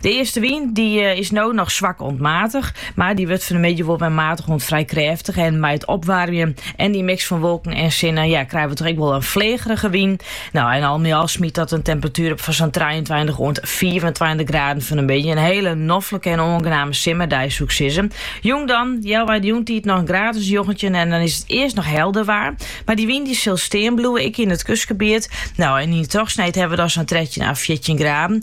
De eastewyn dy eh, is no noch swak oant matich, mar dy wurdt fan 'e middei wol wer matich oant frij krêftich. En mei it opwaarmjen en dy miks fan wolken en sinne, ja, krije we toch ek wol in fleagerige wyn. No, en al mei al smyt dat in temperatuer op fan sa'n 23 oant 24 graden fan 'e middei. In hiele noflike en oangename simmerdei, soe 'k sizze. Jûn dan, ja, yn 'e jûntiid noch in graad as 19 en dan is it earst noch helder waar. Mar dy wyn dy sil stean bliuwe, ek yn it kustgebiet. No, en yn trochsneed hawwe we dan sa'n 13 à 14 graden.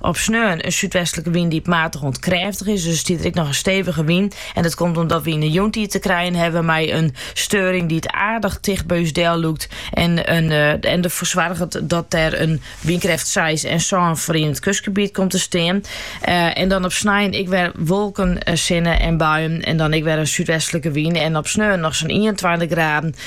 Op sneon in súdwestlike wyn dy't matich oant krêftich is, dus stiet der ek noch in stevige wyn. En dat komt omdat we yn de jûntiid te krijen hawwe mei in steuring dy't aardich ticht by ús del lûkt en en derfoar soarget dat der in wynkrêft seis en sân foar yn it kustgebiet komt te stean. En dan op snein ek wer wolken, sinne en buien en dan ek wer in súdwestlike wyn en op sneon noch sa'n ienentweintich graden